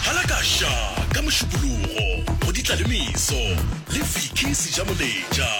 Halakasha ka Mošupologo go ditla le meso le Vicky Sejamoletša.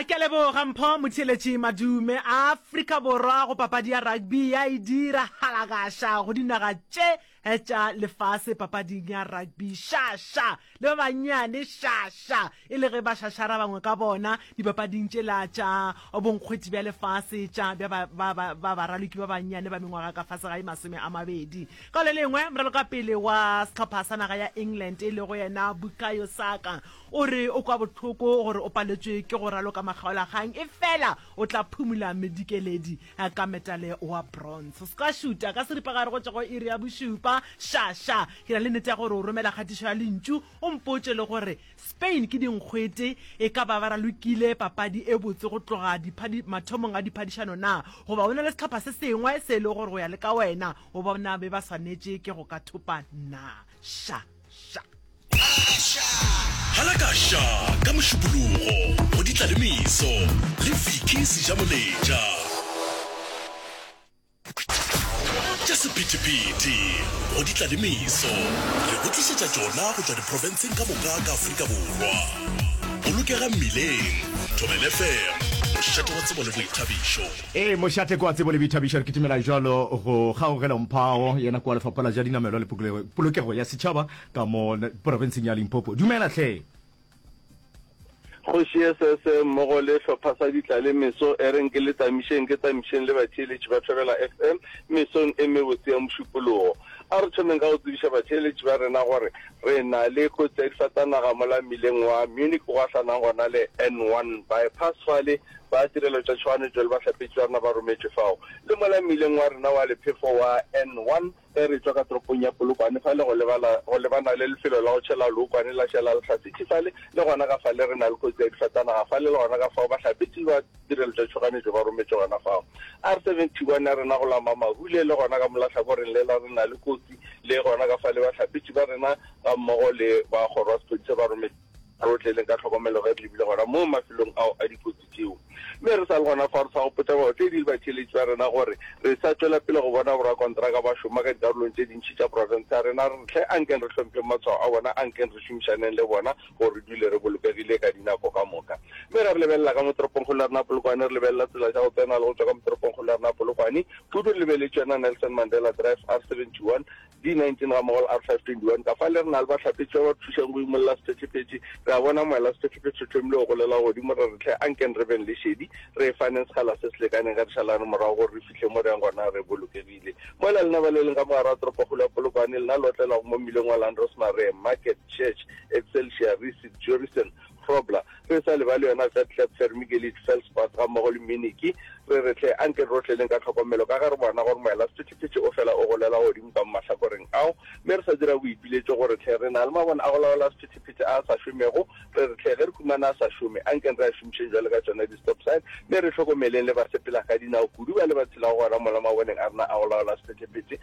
Ke a leboga Mpho Motheeletši Madume. Afrika Borwa go papadi ya rugby ya e dira halakasha go dinaga tše tša lefase papading ya rugby. Šaša le ba bannyane, šaša! e le ge ba šašara bangwe ka bona dipapading tšela tša bonkgweti bja lefase tša bja ba- ba- ba- ba baraloki ba bannyane ba mengwaga ka fase ga e masome a mabedi ka le lengwe moralokapele wa sehlopha sa naga ya england e lego yena bukayo saka o re o kwa bohloko gore o paletšwe ke go raloka makgaolakgang e fela o tla phumula medikeledi eh, ka metale wa bronze se ka šuta ka seripagare go tšwa go iri ya bošupa šaša ke na le nete ya gore o romela kgatišo ya lentšu o mpotše le gore Spain ke dinkgwete, e ka ba ba ralokile papadi e botse go tloga diphadi mathomong a diphadišano na, goba go na le sehlopha se sengwe se e lego gore go ya le ka wena o bona be ba swanetše ke go ka thopa na? Sha! Sha! Halaka Sha ka Mošupologo go Ditlalemeso le Vicky Sejamoletša. Tša sephethephethe go di tla le meso, re go tlišetša tšona go tšwa diprofenseng ka moka ka Afrika Borwa. Bolokega mmileng, Thobela FM, mošate wa tsebo le boithabišo. Ee, mošate ke wa tsebo le boithabišo. Re kitimela jwalo go Kgaugelo Mphao, yena ke wa Lefapha la tša Dinamelwa le Polokego ya Setšhaba ka mo profenseng ya Limpopo. Dumela hle! Kgoši ye sese mmogo le hlopha sa ditla le meso e reng ke le tamišeng ke tamišeng le batheeletši ba Thobela FM mesong e mebotse ya mošupologo. A re thomeng ka go tsebiša batheeletši ba rena gore re na le kotsi ya difatanaga mola mmileng wa Munich o gahlanang gona le N1 bypass fale ba tirelo tša tšhoganetšo le bahlapetši ba rena ba rometšwe fao le mola mmileng wa rena wa lephefo wa N1 Ge re tšwa ka toropong ya Polokwane fa le go lebala go lebana le lefelo la go tšhela lookwane la Šela Lehlasitši fale, le gona ka fale re na le kotsi ya difatanaga fale, le gona ka fao bahlapetši ba tirelo tša tšhoganetšo ba rometšwe gona fao. R71 ya rena go la Mamahule, le gona ka mo la hlakoreng lela re na le kotsi, le gona ka fale bahlapetši ba rena gammogo le ba kgoro ya sephodisa ba rometšwe. Re otleleng ka tlhokomelo ge re lebile gona moo mafelong ao a dikotsi. dikgaetšedi tšeo. Mme re sa le gona fao, re sa go potša baotledi le batšheletši ba rena gore re sa tšwela pele go bona borakontraka ba šoma ka dikarolong tše dintši tša profense ya rena, hle ankeng re hlompheng matshwao a bona, ankeng re šomišaneng le bona gore re dule re bolokegile ka dinako ka moka. Mme ge re lebelela ka mo toropongkgolo ya rena Polokwane, re lebelela tsela tša go tsena le go tšwa ka mo toropongkgolo ya rena Polokwane, kudu re lebeletše yona Nelson Mandela Drive, R71, D19 ga mmogo le R521. Kafao le rena le bahlapetši ba ba thušago go imolla sephethephethe, re a bona moela sephethephethe o thomile go golela godimo, re re, Hle, ankeng re beng le šedi, re e faneng sekgala se se lekaneng ge re šalane morago gore re fihle mo re yang gona re bolokegile. Mola lena ba le leng ka mogare wa toropokgolo ya Polokwane, lena le otlelago mo mmileng wa Landrosmar, re, Market, Church, Excelsior, Risit, Jurison, Grobler, re e sa lebale yona Vetlaep, Vermigelit, Velspach gammogo le Miniki, re re hle, anke re otleleng ka tlhokomelo ka ge re bona gore moela sephethephethe o fela o golela godimo ka mo mahlakoreng ao, mme re sa dira boipiletšo gore hle, re na le mabone a go laola sephethephethe a a sa šomego, re re hle, ge re humana a sa šome, ankeng re a šomišeng bjalo ka tšona di-stop sign, mme re hlokomeleng le basepelagadinao kudu ba le ba tshelago gona mola maboneng a rena a go laola sephethephethe.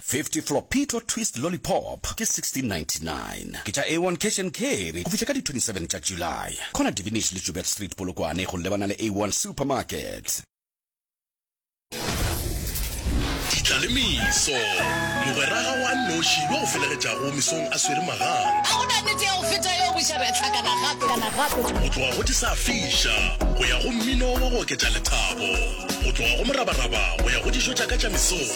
50 Flopito Twist Lollipop ke 1699 ke tša A1 Cash and Carry go fihla ka di 27 tša July. Corner Divinish le Joubert Street Polokwane go lebana le A1 Supermarket. Ditlalemiso, Mogwera ga wa nnoši yo o felegetšago mesong a swere magang. A go na nnete ya go feta yeo bošaba e hlakana gape kana gape? Go tloga go di sa fiša go ya go mmino wa go oketša lethabo, go tloga go morabaraba go ya go dijo tša ka tša mesong.